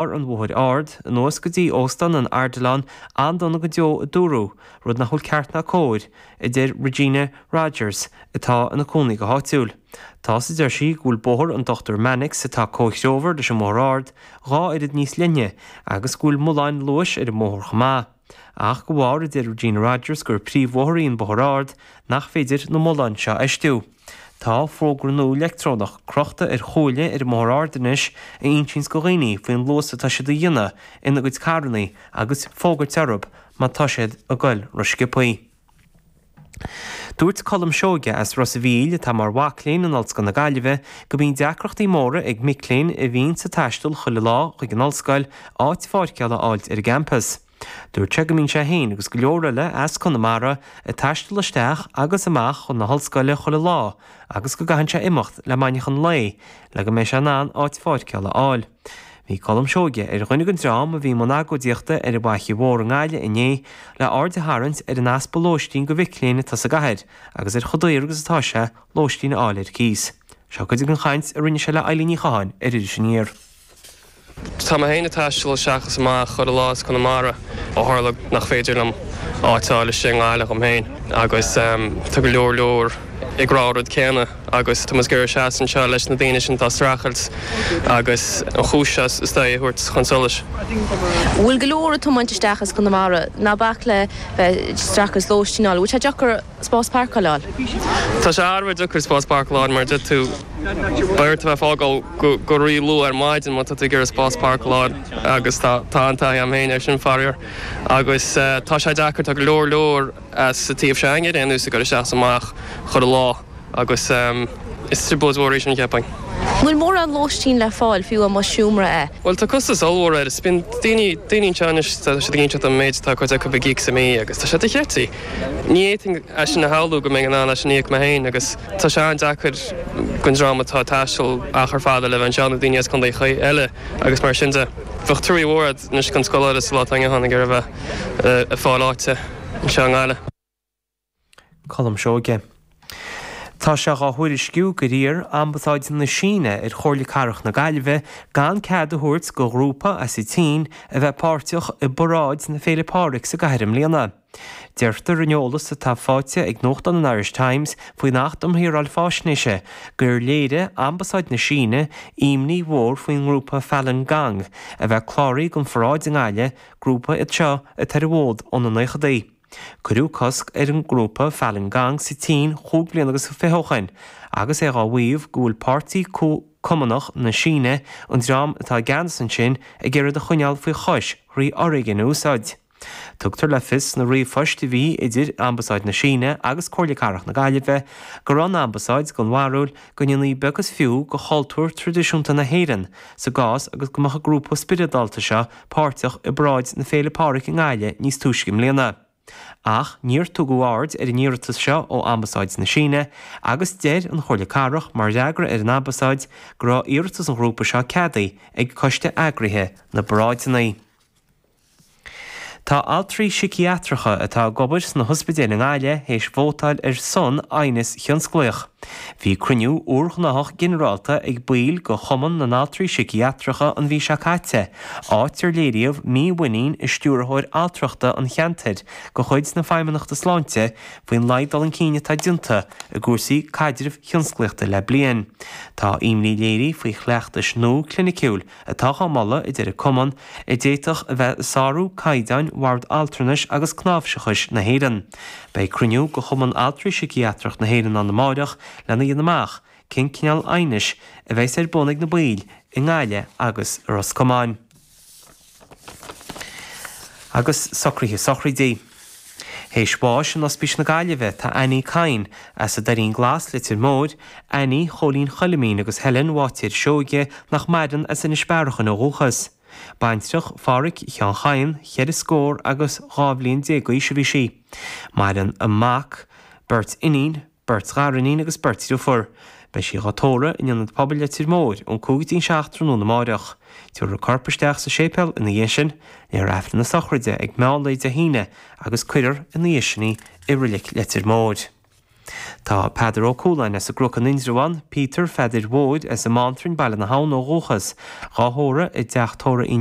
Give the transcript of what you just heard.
ar an mBóthar Ard, anuas go dtí Óstán an Ardilaun, an-dona go deo a dúradh, rud nach bhfuil ceart ná cóir, a deir Regina Rogers, atá ina cónaí go háitiúil. Tá sé, a deir sí, go bhfuil Bóthar an Dochtúir Mannix, atá comhthreomhar leis an mBóthar Ard, dhá oiread níos leithne agus go bhfuil mulláin luais ar an mbóthar chomh maith. ach go bharr a deir Regina Rogers gur príomhbhóthar í an Bóthar Ard nach féidir na mulláin seo a fheistiú. Tá fógra nua leictreonach crochta ar chuaille ar an mBóthar Ard anois a insíonns go dhaoine faoin luas atá siad a dhéanamh ina gcuid carrannaí agus ag fógairt orthu má tá siad ag goil rósciobthaí. Dúirt Colm Seoige as Ros a' Mhíl, atá mar mhac léinn in Ollscoil na Gaillimhe, go mbíonn deacrachtaí móra ag mic léinn a bhíonn ag taisteal chuile lá chuig an ollscoil áit pháirceála a fháilt ar an gcampas. Dúirt sé go mbíonn sé féin agus go leor eile as Conamara ag taisteal isteach agus amach chun na hollscoile chuile lá agus go gcaitheann sé imeacht le maidneachan lae le go mbeidh sé in ann áit pháirceála a fháil. Bhí Colm Seoige ar dhuine den dream a bhí i mbun agóidíochta ar an bhFaiche Mhór i nGaillimh inné le aird a tharraingt ar an easpa lóistín do mhic léinn atá sa gcathair agus ar chomh daor agus atá sé lóistín a fháil ar cíos. Seo cuid den chaint a rinne sé le Eileen Ní Chatháin ar Iris Aniar. Tá mé féin ag taisteal isteach is amach chuile lá as Conamara ó tharla nach féidir liom áit a fháil istigh i nGaillimh dhom féin agus tá go leor leor ag rá an rud céanna. agus tá muid ag iarraidh seasamh anseo leis na daoine sin atá ag streachailt agus an chúis seo is dóigh a thabhairt chun solais. Bhfuil go leor ag tiomáint isteach as Conamara? Ná bac le bheith ag streachailt lóistín a fháil. Bhfuil sé deacair spás páirceála a fháil? Tá sé thar a bheith deacair spás páirceála a fháil mar a dúirt tú, beidh ort a bheith ag fágáil go ríluath ar maidin má tá tú ag iarraidh spás páirceála a fháil agus tá an taithí agam féin ar sin faraor agus tá sé deacair, tá go leor leor. as an taobh sin againne anois ag goil isteach is amach chuile lá, agus is trioblóid mhór í sin, cheapfainn. Níl mórán lóistín le fáil, fiú amháin seomra. Bhuel, tá costas ollmhór air, is bíonn daoine, daoine anseo anois, tá siad ag inseacht dom an méid, tá cuid acu ag íoc sa mí agus tá sé dochreidte. Ní fhéadfainn é sin a shamhlú go mbeinn in ann é sin a íoc mé féin agus tá sé an-deacair don dream atá ag taisteal achar fada le bheith anseo, nó daoine as contaetha eile agus mar sin de. Bheadh truaí mhór a'd anois don scoláire sa lá atá inniu ann ag iarraidh a bheith. ag fáil áite anseo i nGaillimh. Colm Seoige. Tá sé dhá thuairisciú gur iarr Ambasáid na Síne ar Chomhairle Cathrach na Gaillimhe gan cead a thabhairt go ghrúpa as an tSín a bheith páirteach i bParáid na Féile Pádraig sa gcathair i mbliana. Deirtear in eolas atá faighte ag nuachtán an Irish Times faoin Acht um Shaoráil Fáisnéise gur léirigh Ambasáid na Síne imní mhór faoin ngrúpa Falun Gong a bheith cláraithe don pharáid i nGaillimh Grúpa iad seo atá ar an bhfód ó na naochadaí. Cuireadh cosc ar an ngrúpa Falun Gong sa tSín chúig bliana agus fiche ó shin, agus é dhá mhaíomh go bhfuil Páirtí Cumannach na Síne, an dream atá i gceannas ansin, ag iarraidh iad a choinneáil faoi chois thrí fhoréigean a úsáid. Tugtar le fios sna ríomhphoist a bhí idir Ambasáid na Síne agus Comhairle Cathrach na Gaillimhe go raibh an Ambasáid den bharúil go ndéanfaí beag is fiú de chultúr traidisiúnta na hÉireann sa gcás agus go mbeadh an grúpa spioradálta seo páirteach i bParáid na Féile Pádraig i nGaillimh níos túisce i mbliana. Ach níor tugadh aird ar an iarratas seo ó Ambasáid na Síne agus deir an Chomhairle Cathrach mar fhreagra ar an Ambasáid go raibh iarratas an ghrúpa seo ceadaithe ag coiste eagraithe na bparáideanna. Tá altraí síciatracha atá ag obair sna hospidéil i nGaillimh théis vótáil ar son aighneas thionsclaíoch. Bhí cruinniú úrghnáthach ginearálta ag baill de Chumann na nAltraí Síciatracha an mhí seo caite, áit ar léiríodh mímhuinín i Stiúrthóir Altrachta an cheantair de chuid na Feidhmeannachta Sláinte faoin laghad dul chun cinn atá déanta i gcúrsaí caidrimh thionsclaíochta le bliain. Tá imní léirithe faoi chleachtais nua cliniciúil atá dhá moladh a deir an cumann a d'fhéadfadh a bheith ag sárú caighdeáin Bhord Altranais agus Cnáimhseachais na hÉireann. Beidh cruinniú de Chumann Altraí Síciatracha na hÉireann ann amáireach lena dhéanamh amach cén cineál aighnis a bheas ar bun ag na baill i nGaillimh agus i Ros Comáin. Agus socruithe sochraidí. Théis bháis in Ospís na Gaillimhe, tá Annie Kyne, as an Doirín Glas, Leitir Móir, Annie Chóilín Choilimín agus Helen Bháitéir Seoige, nach maireann, as Inis Bearachain ó dhúchas. Baintreach Phádhraic Sheáin Chadhain, cheithre scór agus dhá bhliain déag d'aois a bhí sí. Maireann a mac, beirt iníon, beirt ghariníon agus beirt driofúr. Beidh sí dhá tórramh in Ionad Pobail Leitir Móir ón cúig dtí'n seacht tráthnóna amáireach. Tiúrfar a corp isteach sa séipéal ina dhiaidh sin, léifear Aifreann na sochraide ag meán lae Dé hAoine agus cuirfear ina dhiaidh sin í i Rilic Leitir Móir. Tá Peadar Ó Cualáin as an gCruc in Indreabhán, Peter Pheadair Mhóir as an mBántrainn, Baile na hAbhann, ó dhúchas, dhá thórramh i dteach tórraimh Uí